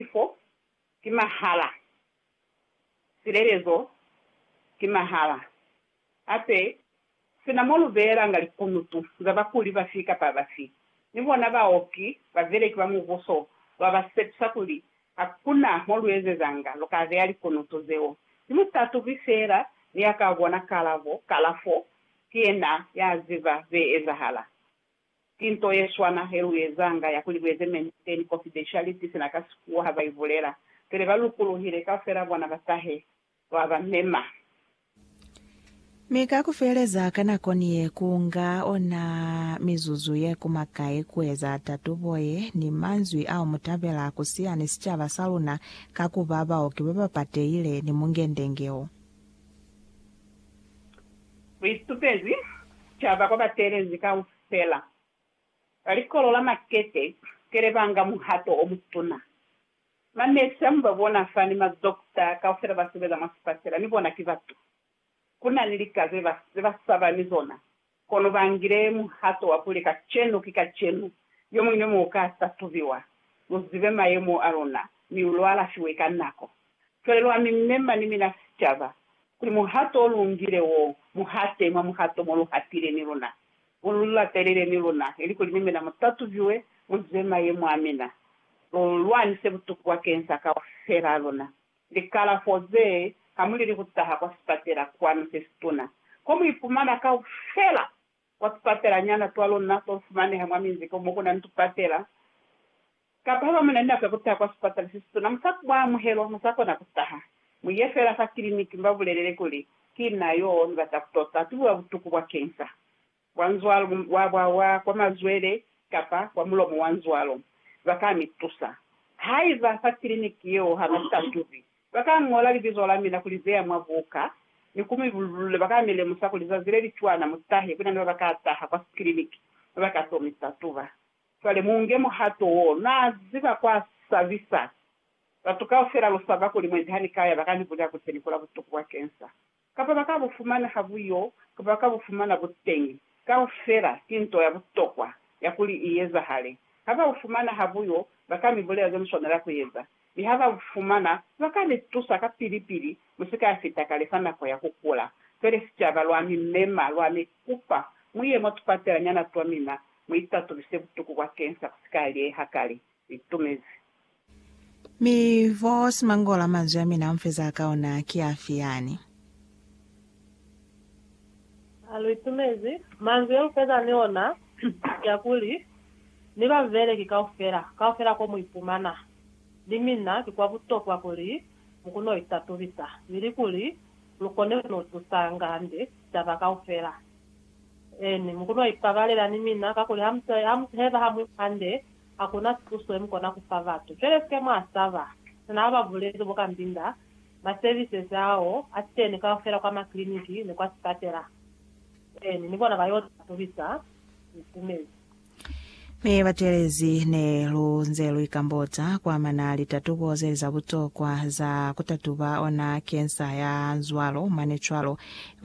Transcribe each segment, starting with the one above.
Sifo ki mahala. Silelezo ki mahala. Hape, sina mo lu beelanga likunutu za bakuli bafi kapa bafi, ni bona baoki ba beleki ba Mubuso lwa ba sepisa kuli ha ku na mo lu ezezanga, lu ka beya likunutu zeo. Ki mutatubi feela ni ya ka bona kalabo. Kalafo ki yena ya ziba ze ezahala. Ki nto yeswana heluezanga ya kuli lueze maintain confidentiality sina ka sikuwa ha baibulela pele ba lukuluhile kaufela bona ba tahe lwa ba mema. Mi ka kufeleza ka nako ni ye ku nga ona mizuzu ye kuma kai kueza tatubo ye ni manzwi ao mutabela kusiya ni sicaba sa luna ka kuba baoki baba patehile ni mungendenge o. Kuitupezi sicaba kwa bateelezi kaufela ba likolo la Makete kele banga muhato omutuna. Ma nurse amu babona fa ni ma doctor kaufela basebeza mwa sipatela ni bona ki batu. Kunani lika zebasaba ni zona. Kono ba ngile muhato wa kuli kacenu ki kacenu, yo muñwi mo ka tatubiwa. Lu zibe mayemo a luna, mi lu alafiwe ka nako. Cwale lwa mi mema ni mina sicaba, kuli muhato o lu ngile wo, mu hate mwa muhato mo lu hatile ni luna, mo lu latelele ni luna, ilikuli ni mina mu tatubiwe, mu zibe mayemo a mina, lu lwanise butuku bwakeñisa kaufela a luna. Likalafo ze, Hamulili ku taha kwa sipatela kwanu se situna, ko mu ipumana kaufela kwa tupatelanyana twa luna to fumaneha mwa minzi ko mo ku na ni tupatela. Kapa haba mu na ni nako ya ku taha kwa sipatela se situna, mu sa mwa amuhelwa, mu sa kona ku taha. Mu ye feela fa kiliniki, mu ba bulelele kuli, Ki na yo ni bata ku tota, tu biwa butuku bwa kensa. Kwa nzwalo wa bwa wa kwa mazwele kapa kwa mulomo wa nzwalo, ba ka ni tusa. Haiba fa kiliniki yeo ha ba sa tubi, ba ka ñola libizo la mina ku li beya mwa buka ni ku mi bululula. Ba ka mi lemusa kuli zazi le li cwana mu tahe ku na ni ba ba ka taha kwa kiliniki ba ba ka to mi tatuba. Cwale mu nge muhato wo. Na ziba kwa sabisa. Batu kaufela lu saba kuli mwendi ha ni ka ya ba ka ni bulela kuli se ni kula butuku bwa cancer. Kapa ba ka bu fumana ha bu yo, kapa ba ka bu fumana buteñi. Kaufela ki nto ya butokwa ya kuli i ezahale. Ha ba bu fumana ha bu yo, ba ka mi bulela ze mu swanela ku eza. Mi ha ba bu fumana, ba ka ni tusa kapili-pili mu si ka ya fita kale fa nako ya ku kula. Pele sicaba lwa mi mema, lwa mi kupa mu ye mwa tupatelanyana twa mina, mu itatulise butuku bwa kensa bu si ka lieha kale. itumezi. Mi, Boss Mangola, manzwi amina unfezaa ka ona ki afi yani? A, Lu itumezi. Manzwi ya lufeza ni ona ki a kuli, Ni babeleki kaufela, kaufela ko mu ipumana, ni mina, ki kwa butokwa kuli mu kono itatubisa, ili kuli lu kone kuno tusanga hande taba kaufela. Eeni, mu kono ipabalela ni mina, kakuli ha mu si heba hamwi hande. hakuna tuso yemukona kufa batu. Cwale sike mwasaba. Sina ababulezi bo kambinda ma services ao ateni kaufela kwa ma clinic ni kwa sipatela, then ni bona bayota tobisa mukumezi. Mi batelezi ne lu nze lu ikambota kwa mana litatubo zeli za butokwa za kutatuba ona cancer ya nzwalo mane cwalo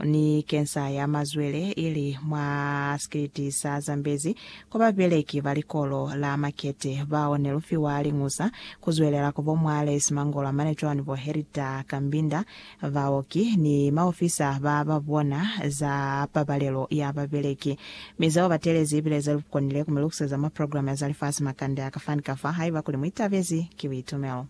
ni cancer ya mazwele ili mwa sikiliti sa Zambezi Kwa babeleki ba likolo la Makete bao ne lu fiwa liñusa ku zwelela ku bo mwa Lace Mangolwa mane cwani bo Herita Kambinda, baoki, ni maofisa ba ba bona za pabalelo ya babeleki. Mi zeo ba telezi ibile ze lu konile ku mi lukuseza mwa programe ya za lifasi makande a ka fani ka fa haiba kuli mu itabezi ki buitumelo.